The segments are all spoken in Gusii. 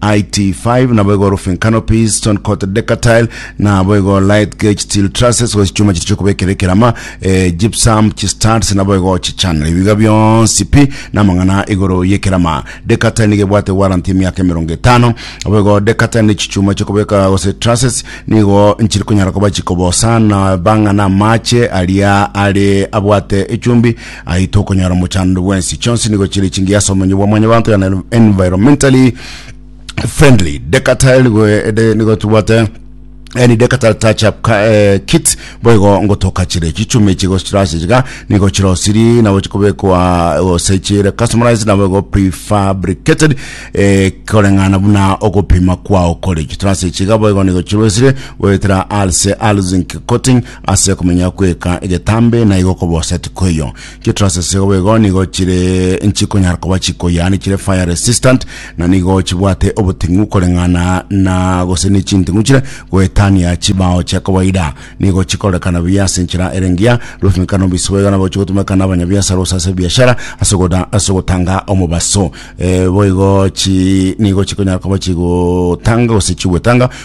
IT5 nabo igo roofing canopies, stone coated decatile nabo igo light gauge steel trusses gose chichuma chiria chiokobekera ekerama eh, gypsum chistuds nabo igo chichannel ebi biga bionsi pi namang'ana igoro yekerama decatile nigo ebwate warranty emiaka emerongo etano abo igo decatile ne chichuma chiokobeka gose trusses nigo nchiri konyara koba chikobosa na bang'ana amache aria are abwate echumbi Aye tokonyora mochando bwensi chionsi nigo chiri chingiya ase omonyo bwa mwanyabanto yani environmentally friendly decatal nigo eh, de- nigo tubwate yani decatal touch up ka- eh, kit boigo ngotoka chire chichumi chigo chirase chiga nigo chirosiri nabo chikobekwa gose chire customized nabo igo prefabricated eh, koreng'ana buna ogopima kwao kore chitrase chiga boigo nigo chirosire goetera alse alzinc coating Ase komenya kw'eka egetambe naigo kobosa tikoiyo. Chitrusses igo boigo nigo chire nchikonyara koba chiko yaani chire fire resistant na nigo chibwate oboting'u koreng'ana na gose n'echinting'u chire goetania chibao chia kawaida. Nigo chikorekana buya ase enchera ere engiya, rwefimikano bise boigo nabo chigotumeka n'abanyabiasara gose ase ebiashara ase ogoda ase ogotanga omobaso. Eh, boigo chi nigo chikonyara koba chigotanga gose chigwetanga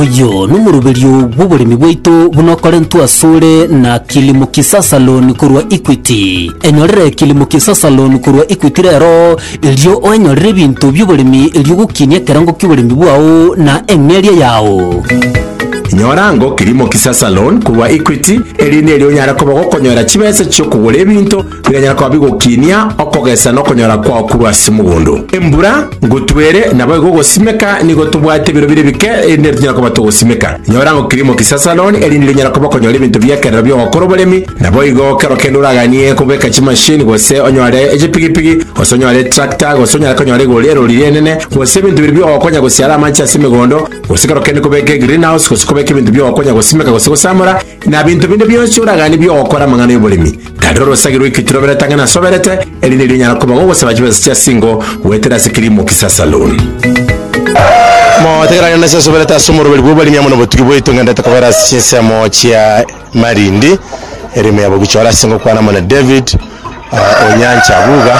Oyo nomoruberio bw'oboremi bwaito buna okorentwe asore na Kilimo Kisasa Loan korwa Equity. Enyorere Kilimo Kisasa Loan korwa Equity rero, erio oenyorere ebinto bi'oboremi erio ogokinia ekerango ki'oboremi bwao na eng'eria yao. Nyora ango Kilimo Kisasa Loan korwa Equity, erinde erio onyare koba gokonyora chibesa chi'okogora ebinto Bikanyara koba bigokinia okogesa na okonyora kwao korwa ase mogondo. Embura ngotwere, naboigo ogosimeka nigo tobwate ebiro bire bike erinde nero tonyare koba togosimeka. Nyora ng'a kirimo kisasaroni erinde rinyare koba konyora ebinto bi'ekerero bi'ogokora oboremi, naboigo kero kende oraganie kobeka chimashini gose onyore echipigipigi gose onyore etractor gose onyare konyora igoro erori ri'enene gose ebinto bire bi'ogokonya gosiara amache ase emegondo gose kero kende kobeka egreenhouse gose kobeka ebinto bi'ogokonya gosimeka gose gosamora na binto binde bionsi oraganie bi'ogokora amang'ana y'oboremi. Tari orosagi rw'ekiti roberete ang'e nasoberete, eri nerio onyara koba gogosaba chibesa chia singo goetera ase Kilimo Kisa Saloon. Motegeranie nase asoberete ase omoroberi bw'oborimi amo nobotugi bwaito ng'endete kobera ase chinsemo chia Malindi erimo yabo gochora ase ngokwana amo na David uh, Onyancha Buga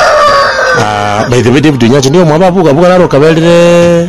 uh, by the way David Onyancha nigo omwabo abuga abuga naro okaberire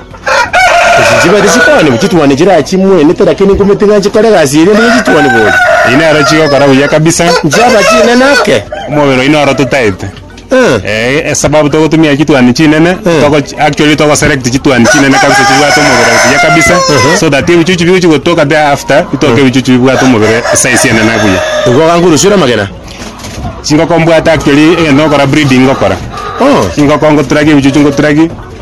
Ase chibare chikwanigwa chituoni chiraye chimwenete, lakini ikume ting'anche kore egasi eria nigo chituoni boria. Eyi nero chigokora buya kabisa. Nchiaba chinene ake. Omobere oyi noro totaete. Eh. Eh, esababu togotumia chituani chinene, togo actually togo select chituani chinene kabisa chibwate omobere buya kabisa, so that ebichuchu bigochi gotoka there after, bitoke ebichuchu bibwate omobere size enene buya. Nigo ogankurusiera amagena. Chingoko mbwate actually egento ngokora breeding ngokora. Oh. Chingoko ngoturage ebichuchu ngoturage.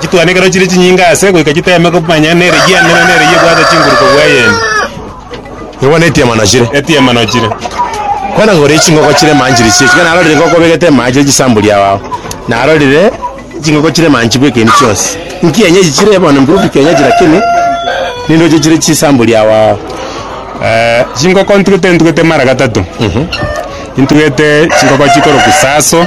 chitwane ekero chire chinyinge aase goika chiteme komanya nere egiana nere nere eyio ebwate chinguru kobua eyende. Nigo bono etiama nochire. Etiama nochire. Bono gore chingoko chire manchire chie ekero narorire ngoko obegete amache chire chisambuli ao ao narorire chingoko chire manchi bweka ebi chionsi nkienyeji chire bono mburubi kienyeji lakini nindoche chire chisambuli ao ao Eh, chingoko ntugete ntugete mara gatato intugete chingoko chikoroku saso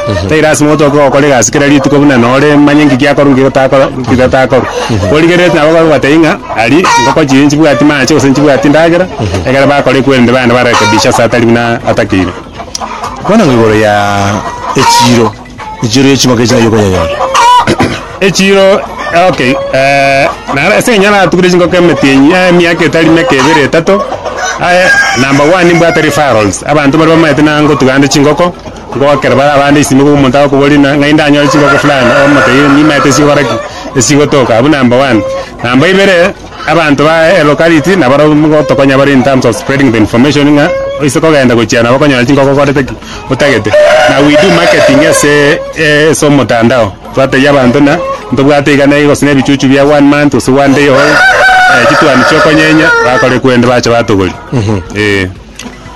Tari lasima otoke gokora egasi kera rituko buna nore manye ng'iki akorwa ng'iki takorwa ng'iki tatakorwa. Origerereti nabo abwo bagobatebia ng'a aria ngoko chiria nchibwati mache gose nchibwati ndagera, ekero bakora ekwerende baende barekebishe ase atari buna atakeire. Bono ng'a igoro ya echiiro, echiiro ya ching'oki echi nai okonyanyora? Echiiro okay naro ase eng'encho naratugire chingoko emetienyi emiaka etari meke ebere etato, number one mbwate referrals, abanto baria bamaete nangotugande chingoko. Ngoakera bare abande isiko nigo omonto agokoboria ng'a ng'ai ndanyore chingoko fulani, omotebi nimaete esigokora ki? Esigotoka abwo number one. Number ibere, abanto ba elocality nabaro ngotokonya bare in terms of spreading the information ng'a oise kogenda gochia nabo okonyora chingoko okorete ki? Otagete. Na we do marketing ase ase omotandao, twatebia abanto ng'a ntobwate iga na iga gose na ebichuchu bia one month gose one day old, chituani chiokonyeenya bakore kwende bache batogorie, eeh.